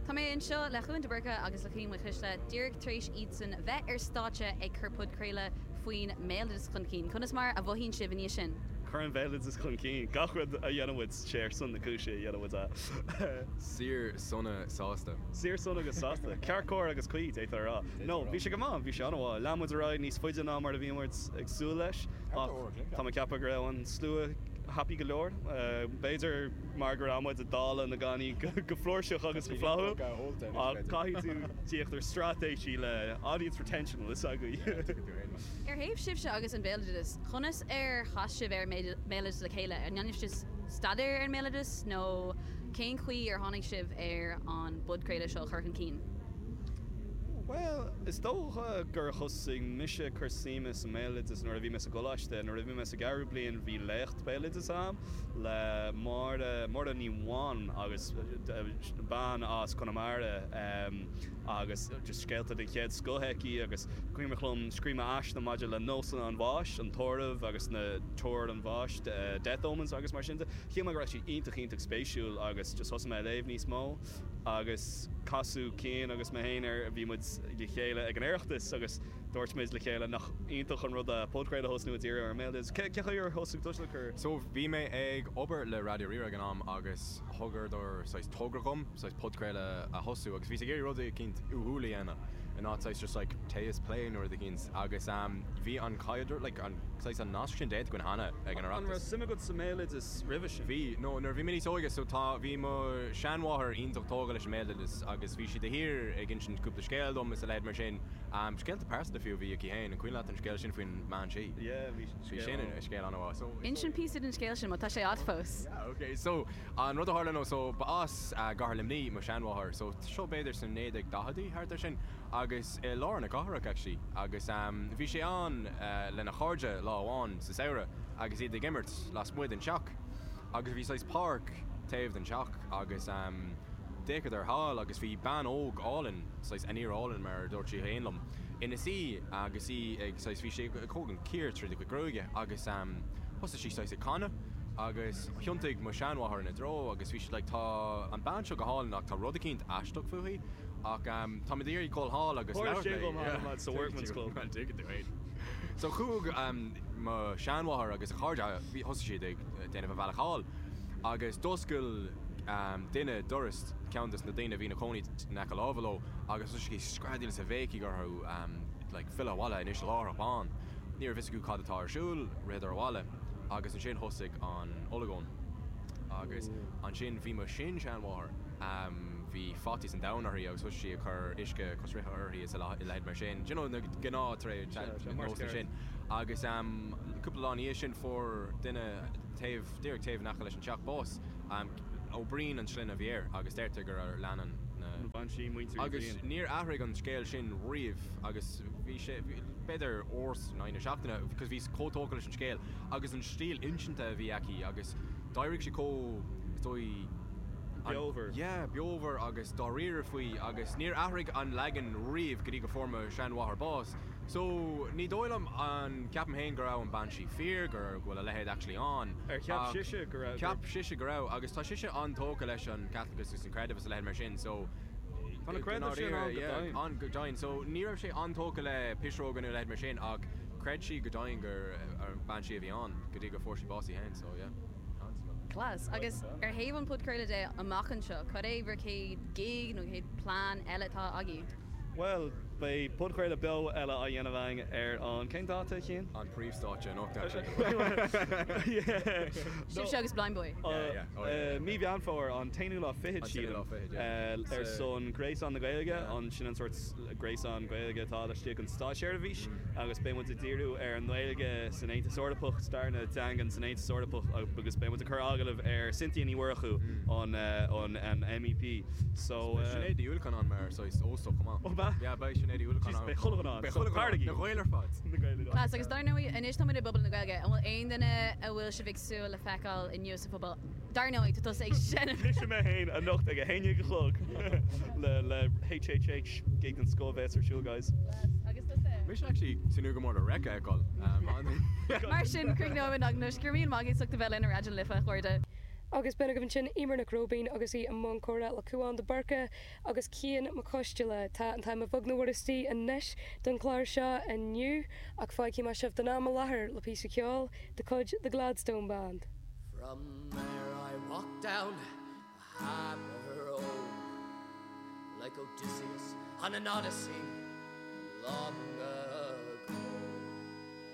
Tá mé anseo le Cúán de Búrca agus le Cian Mhaoilchliste díreach tar éis iadsan bheith ar stáitse ag cur podchraoladh faoin mbéaloideas chun cinn. Conas mar a mhothaíonn sibh i ndiaidh sin? Cuireann an béaloideas chun cinn gach rud a dhéanann muid, sé ar son na cúise a dhéanann muid é. Saor, sona, sásta. Saor, sona agus sásta. Ceart, cóir agus cuí, d'fhéadfá a rá. No, bhí sé go maith, bhí sé an-mhaith. Lean muid ar aghaidh níos faide ná mar a bhí muid ag súil leis ach tá mé ag ceapadh go raibh an slua happy go leor, b'fhéidir. mar go raibh muid ag dáileadh na gcannaí go flúirseach agus go flaithiúil, ach caithfidh tú tíocht ar straitéisí le audience retention tá a fhios agat. Ar thaobh sibhse agus an béaloideas, conas ar chas sibh ar an mBéaloideas le chéile? An ndéanann sibh staidéar ar an mBéaloideas nó cén chaoi ar tháinig sibh ar an bpodchraoladh seo a chur chun cinn? Bhuel, is dócha gur thosaigh mise ag cur suime sa mBéaloideas nuair a bhí mé sa gcoláiste. Nuair a bhí mé sa gceathrú bliain, bhí léacht. béaloidis a'm le Máire, Máire Ní Bháin, agus bean as Conamara agus scéalta den chéad scoth aici agus cuimhneach liom scríobh mé aiste maidir le nósanna an bháis, an tórramh agus na tuair an bháis, death omens agus mar sin de. Shíl mé go raibh siad iontach iontach spéisiúil agus thosaigh mé ag léamh níos mó agus casadh Cian agus mé féin ar, bhí muid le chéile ag an Oireachtas agus, Dúirt muid le chéile, nach iontach an rud é podchraoladh a thosnú ag díriú ar an mbéaloideas, cén chaoi ar thosaigh tú leis an. So, bhí mé ag obair le Raidió Rí-Rá ag an am agus thugadar saghas togra dhom, saghas podchraoladh a thosú agus bhíos ag iarraidh rud eicínt uathúil a dhéanamh in áit saghas just like tae is plé nó rud eicínt agus bhí an caidreamh like an saghas an nasc sin déanta againn cheana ag an Oireachtas. An raibh suim agat sa mbéaloideas roimhe sin? Bhí, nó nuair a bhí mé níos óige so tá, bhí mo sheanmháthair iontach tógtha leis an mbéaloideas agus bhí sí de shíor ag insint cúpla scéal dom is a leithéid mar sin Scéalta pearsanta fiú a bhí aici féin, an cuimhin leat an scéal sin faoin mbean sí? Yeah, bhí scéal ann. Bhí scéal ann, ó. Inis dúinn píosa den scéal sin, má tá sé agat fós. Yeah, ok, so, an rud a tharla ná, so, ba as gCathair Luimní mo sheanmháthair, so, seo b'fhéidir sna 1940idí, thart ar sin, agus i lár na cathrach, actually, agus bhí sí ann lena cairde lá amháin sa samhradh agus iad ag imirt lasmuigh den teach. Agus bhí saghas páirc taobh den teach agus d'fhéacadar thall agus bhí bean óg álainn, saghas fíorálainn mar a dúirt sí féin liom, ina suí agus í ag, saghas, bhí sí ag tógaint cíor tríd a cuid gruaige agus thosaigh sí saghas ag canadh agus thiontaigh mo sheanmháthair ina dtreo agus bhí sí like tá an bean seo go hálainn ach tá rud eicínt aisteach fúithi ach táim ag iarraidh dhul thall agus labhairt léi. Tharla sé dhom thall yeah sa workman's club. Tuigeann tú é. So chuaigh mo sheanmháthair agus a cairde, thosaigh siad ag. déanamh a bhealach thall, agus d'oscail duine doras cheann de na daoine a bhí ina chónaí in aice láimhe leo agus thosaigh sí ag screadaíl is ag béicíl orthu like filleadh abhaile anois láithreach bonn. Ní raibh fhios acu céard a bhí ar siúl, ritheadar abhaile agus ansin thosaigh an olagón agus ansin bhí mo shin-sheanmháthair, bhí faitíos an domhain uirthi agus thosaigh sí ag cur uisce coisricthe uirthi is a leithid mar sin, you know na gnáthnósanna sin agus. Cúpla lá ina dhiaidh sin fuair duine taobh, díreach taobh in aice leis an teach bás. Ó Braoin an sloinne a bhí air agus deirtear gur leanann an bhean sí muintir Uí Bhriain. Agus níor athraigh an scéal sin riamh agus bhí sé, b'fhéidir uair in aghaidh na seachtaine because bhí sí chomh tógtha leis an scéal agus an stíl insinte a bhí aici agus d'éirigh sí chomh, is dóigh, an, Beomhar. yeah, beomhar agus dáiríre faoi agus níor athraigh an leagan riamh go dtí go fuair mo sheanmháthair bás. So, ní dóigh liom, an ceapaim féin go raibh an bhean sí fíor, go raibh, go bhfuil a leithéid actually ann, ach, Ar cheap sise go raibh? cheap sise go raibh, agus bhí sise an-tógtha leis an Caitliceachas agus an creideamh is a leithéid mar sin, so, Tá na go creideamh sin ndáiríre, ann go yeah, deimhin. ann go deimhin, so, ní raibh sí an-tógtha le piseoga nó a leithéid mar sin, ach chreid sí go deimhin gurb í an bhean sí a bhí ann, go dtí gur fuair sí bás í féin, so, yeah, seans. Class. Agus ar thaobh an phodchraolta de amach anseo, cad é bhur chéad gig nó chéad plean eile atá agaibh? Bhuel, beidh podchraoladh beo eile á dhéanamh againn ar an. cén dáta a Chiain? an príomhstáitse anocht actually. Sibhse agus Blindboy? Yeah, yeah. Oh yeah, yeah. Mí Mheán Fómhair, an t-aonú lá fichead An t-aonú sílim, lá fichead, yeah. ar son Ghréasán na Gaeilge, Yeah. an, sin an sórt gréasán Gaeilge atá laistigh den státseirbhís. agus beidh muid ag díriú ar an nGaeilge san Aontas Eorpach, stair na dteangan san Aontas Eorpach agus beidh muid ag cur agallamh ar Cynthia Ní Mhurchú, an MEP. So. Beidh Sinéad Uí Uallacháin mar saghas óstach chomh maith. Oh beidh? Yeah beidh Sinéad Uí Uallacháin ann. Beidh chuile dhuine ann. Beidh chuile dhuine ann. Na Gaeil ar fad. Na Gaeil ar fad. Agus dar ndóigh anois tá muid i bPuball na Gaeilge, an bhfuil aon duine a bhfuil sibh ag súil le feiceáil inniu sa phuball? Dar ndóigh, tá tusa ag seinm. Mise mé féin anocht ag a haon déag a chlog le HHH gig den scoth a bheas ar siúl guys. Agus tusa? Mise actually tnúth go mór le Reic a fheiceáil ann. Mar sin, cruithneoidh an eagnaise gur maith éisteacht a bheith le Raidió na Life, a chairde. Agus bhí againn ansin, Emer Nic Róibéaird, agus í i mbun comhrá le Cuán de Búrca agus Cian Mac Coisdealbha. Tá an t-am beagnach istigh anois don chlár seo inniu, ach fágfaidh mé sibh don am i láthair le píosa ceoil de chuid The Gladstone Band. From there I walked down a harbour road Like Odysseus on an Odyssey long ago.